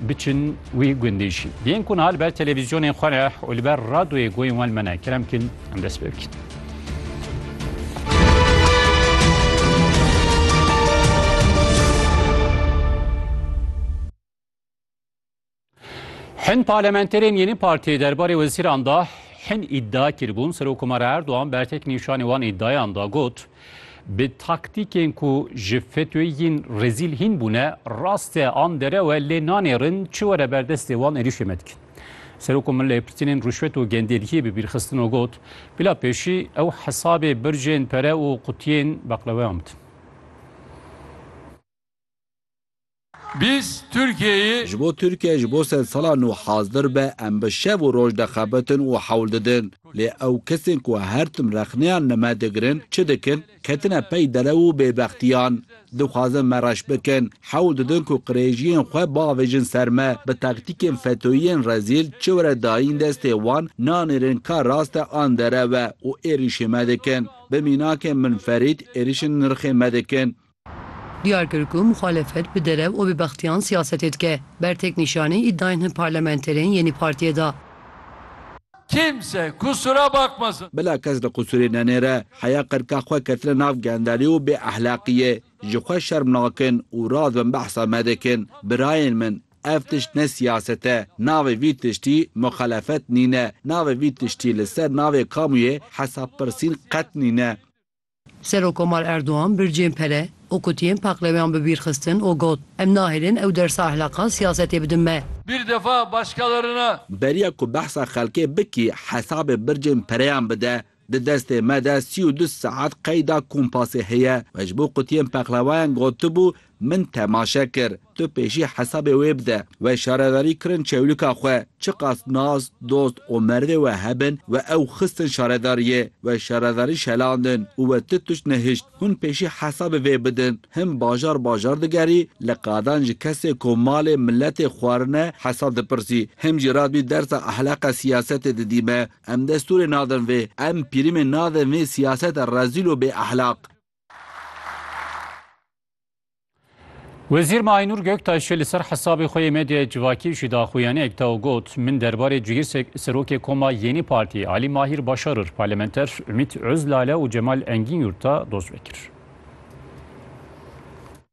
Biçin wî gundê jî. Yên ku niha li ber televîzyonên xwe re û li ber radoyê goyên wan me ne. Kerem bikin em dest pê bikin. Hin parlamenterên yeni partiyê derbarê wezîran da hin îdda kiribûn Serokomara Erdoğan bertek nîşanê wan îddayan da got. Bi taktîkên ku ji FETÖ'yê yên rezîl hîn bûne, rast e an derew e lê nanêrin çi were ber destê wan êrîşê me dikin. Serok û mileypirtînên rûşwet û genderiyê bi bîrxistin û got, Bila pêşî ew hesabê bircên pere û qutiyên beqleweyan bidin. Biz Türkiye'yi. Ji bo Tirkiye ji bo sed sala nû hazdir be em bi şev û roj dixebitin û hewl didin. Lê ew kesên ku her tim rexneyan li me digirin çi dikin? Ketine pey derew û bêbextiyan. Dixwazin me reş bikin. Hewl didin ku qirêjiyên xwe biavêjin ser me. Bi taktîkên FETÖ'yên rezîl çi were dayîn destê wan nanêrin ka rast e an derew e û êrîşê me dikin. Bi mînakên min Ferîd êrîşên nirxê me dikin. Diyar kir ku muxalefet bi derev û bêbextiyan siyasetê dike. Ber têknîşanî îdayên hin parlamenterên yê nî partiyê da. Kimse kusura bakmasın. Bila kes li qusûrê nenêre. Heya qirka xwe ketine nav gendelî û bêehlaqiyê. Ji xwe şerm nakin û radibin behsa me dikin. Birayên min, ev tişt ne siyaset e. Navê vî tiştî muxalefet nîne. Navê vî tiştî li ser navê kamûyê hesabpirsîn qet nîne. Serokkomar Erdogan bircên pere û kutiyên paqleweyan bi bîr xistin û got, Em nahêlin ew dersa ehlakan siyasetê bidin me. Bir defa başkalarına. Beriya ku behsa xelkê bikî hesabê bircên pereyan bide. Di destê me de sî û du saet qeyda kompasê heye. We ji bo kutiyên peqlewayan gotibû Min temaşe kir, tu pêşî hesabê wê bide, we şaredarî kirin çewlika xwe, çiqas nas, dost û merdê we hebin, we ew xistin şaredariyê, we şaredarî şelandin û we tu tişt nehişt, hûn pêşî hesabê vê bidin, hin bajar bajar digerî, li qadan ji kesê ku malê miletê xwarine hesab dipirsî, him jî radbî dersa ehleqa siyasetê didî me, em destûrê nadin vê, em pirîmê nadin vê siyaseta rezîl û bêehlaq. Wezîr Maynûr Göktaşê li ser hesabê xwe yê medyaya civakî jî daxuyaniyek da û got, Min derbarê cihîr serokê koma Yênî Partî Alî Mahîr Başarir, parlamenter Umît Ozlale û Cemal Engînyurt da doz vekir.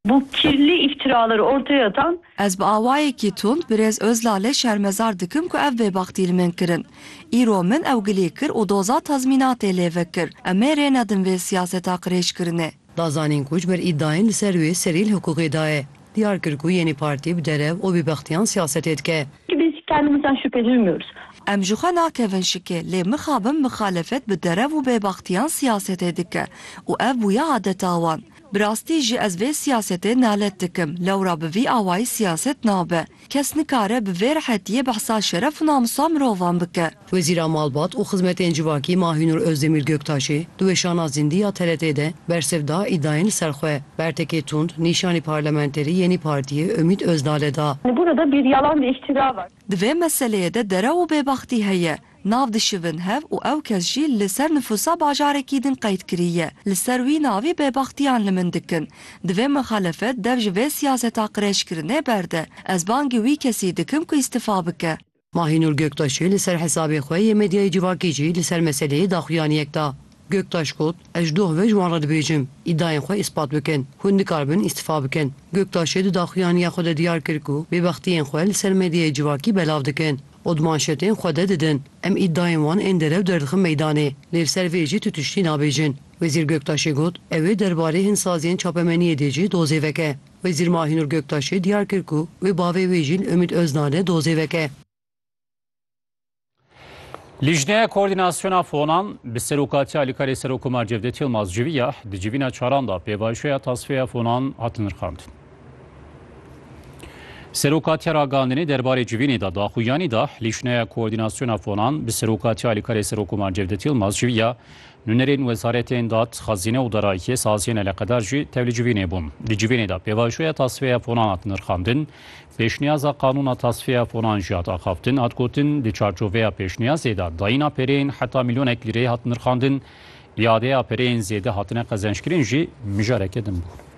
Bu kirli iftiralar ortaya atan. Ez bi awayekî tund birêz Ozlalê şermezar dikim ku ev bêbaxtî li min kirin. Îro min ew gilî kir û doza tazmînatê lê vekir. Em ê rê nedin vê siyaseta qirêjkirinê. Da zanîn ku ji ber îdayên li ser wê serî li hiqûqê de ye. Diyar kir ku yê nê partî bi derev û bêbextiyan siyasetê dike. Ki biz kendimizden şüphe duymuyoruz. Em ji xwe nakevin şikê lê mixabin mixalefet bi derev û bêbextiyan siyasetê dike û ev bûye adeta wan. Bi rastî jî ez vê siyasetê nalet dikim. Lewra bi vî awayî siyaset nabe. Kes nikare bi vê rehetiyê behsa şeref û namûsa mirovan bike. Wezîra Malbat û Xizmetên Civakî Mahînur Ozdemîr Göktaşê di weşana Zindî ya TRT'ê de bersiv da îdayên li ser xwe. Bertekê tund nîşanî parlamenterî yenî partiyê Umît Ozdalê da. Li gorî de bêriyalan de îştîrak e. Di vê meseleyê de derew û bêbextî heye. Nav dişivin hev û ew kes jî li ser nifûsa bajarekî din qeyd kiriye. Li ser wî navê bêbextiyan li min dikin. Divê mixelefet dev ji vê siyaseta qirêjkirinê berde. Ez bangê wî kesî dikim ku îstifa bike. Mahînur Göktaşê li ser hesabê xwe yê medyayê civakî jî li ser meseleyê daxuyaniyek da. Göktaş got, Ez ji doh ve ji wan re dibêjim, îdayên xwe îspat bikin. Hûn dikaribin îstifa bikin. Göktaşê di daxuyaniya xwe de diyar kir ku bêbextiyên xwe li ser medyayê civakî belav dikin. û di manşetên xwe de didin. Em îdayên wan ên derew derdixin meydanê, lê li ser vê jî tu tiştî nabêjin. Wezîr Göktaşê got, Ew ê derbarê hin saziyên çapemeniyê dê jî dozê veke. Wezîr Mahinur Göktaşê diyar kir ku wê bavê wê jî li Ümit Özdağ de dozê veke. Lîjneya Koordînasyona Fonan bi serokatiya Alîkarê Serokkomar Cevdet Yilmaz civiya. Di civîna çaran de pêvajoya tasfeya fonan hat nirxandin. Seroka Teragandinê derbarê civînê de daxuyanî da, Lîşneya Koordînasyona Fonan bi serokatiya Alîkarê Serokoman Cevdet Yilmaz civiya nûnerên wezaretên dad, xezîne û darayîtiyê saziyên eleqedar jî tevlî civînê bûn. Di civînê de pêvajoya tasfeya fonan hat nirxandin, pêşniyaza qanûna tasfeya fonan jî hat axaftin, hat gotin di çarçoveya pêşniyazê de dayîna pereyên heta milyonek lîreyê hat nirxandin, îadeya pereyên zêde hatine qezenckirin jî mijareke din bû.